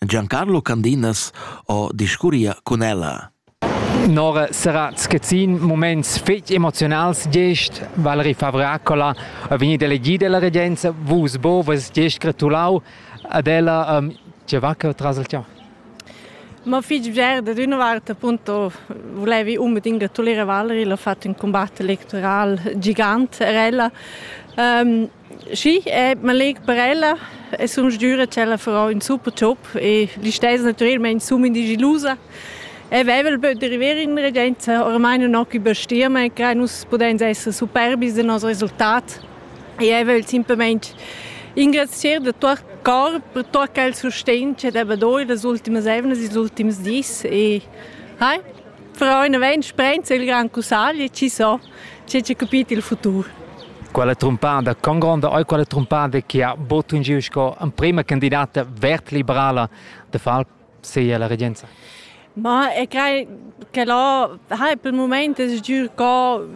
Giancarlo Candinas ho discurria cun ella. Nora sarà schezzin moments fetg emozionals gest Valerie Favracola a vegnit elegida la regenza vus bo vus gest gratulau ad ella um, che va tras il temps Ma fitg bger, da d'una vart appunto volevi unbedingt gratulire Valerie, l'ho fatto un combatte electoral gigant er ella. Um, Sì, eh, man legt per ella e sun sdüra ch'ella farà ün super job e l'istess natüralmaing sun in digilusa. E vaiva il böt da river in regenza, ormai nun ho chi bestierma e crai nus pudains esser superbis da nos resultat. E eu vögl simplamaing ringrazier da tuot cor per tuot quel sustegn ch'el ha do in las ultimas eivnas, ils ultims dis e hai Fra una vegn sprenza il gran cussagli e ci so, c'è c'è capito il futuro. Quella trumpada congronda oi quella trumpada che ha botto in giro sco prima candidata vert-liberala de far sei alla regenza. Ma e crei che lo hai per il momento es giù co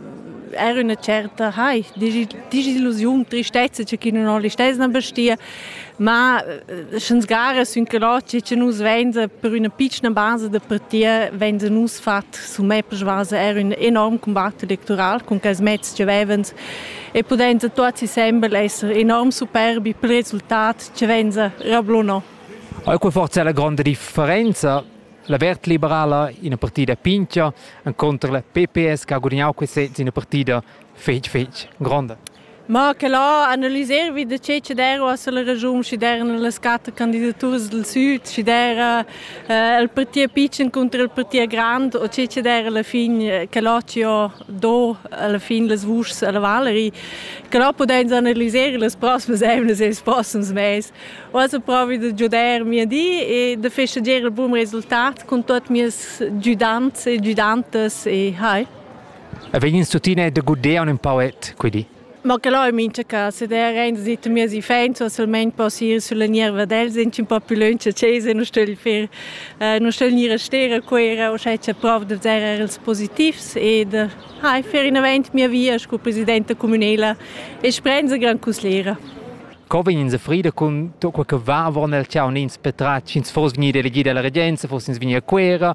era una certa hai disillusione, tristezza c'è chi non ho l'istesna bestia Ma sch'ns gara sün que là che nus vainsa per üna pitschna basa da partia vainsa nus fat summè per schwasa er ün enorm combat electoral con quels mezs che vevans e pudensa tuots insembel esser enorm superbi pel resultat che vainsa rablunò. Eir que forza è la gronda differenza La Vert Liberala, ina partida pincha, incontra la PPS che ha gudagnau questa ina partida fetg fetg gronda. Ma che là analiser vi da che che dera uossa la ragiun schi deran las quatter candidaturas dal süd, schi dera eh, il parti pitschen contro il parti grand o che che dera alla fin eh, che là ci ho do alla fin las vuschs alla Valerie, che là podens analiser las prossimas emnas e ils prossims mes. Uossa provi da giuder mia di e da festeggiare il buon resultat con tutti i miei giudanti e giudantes e hai. E vegins tuttina da guder ün pauet, quei di. Ma che là è mincha casa der ein seit mir si fein, so solment possier sulla nierva dels in un po più lunch chesa non stell fer non stell nira stera quera o sche c'è prov de zerrer els positivs ed ha fer in avanti mia via sco presidenta comunela e sprenza gran cuslera. Co vegnin se frida cun tutto quel che va avon el ciao nins petra ins fos gnir delegida alla regenza fos ins vegnir a Quera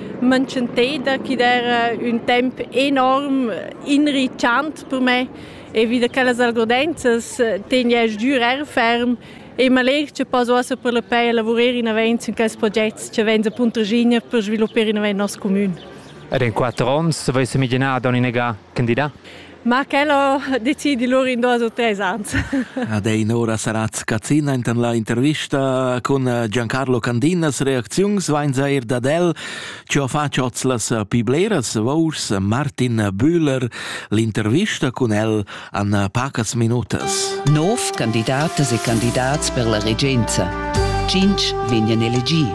manchenteda chi'd era ün temp enorm inritschant per me e vi da quellas algodenzas tegniasch dür eir ferm e m'allegr cha poss uossa per la pei lavurer inavant sün quels progets cha vains a Puntraschigna per sviluppar inavant nos cumün. Ed in quatter ons savais miglinar Doni Negà candidà? Ma quel ho decidi lur in duos u tres ans. Ad ein ora sarà scazzina intan la intervista cun Giancarlo Candinas reacziuns vainza eir dad el, chi ho fatg hoz las pi bleras vours Martin Bühler l'intervista cun el an pacas minutas. Nov candidatas e candidats per la regenza. Tschinch vegnan elegi.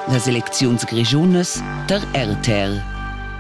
Las elecziuns grischunas tar RTL.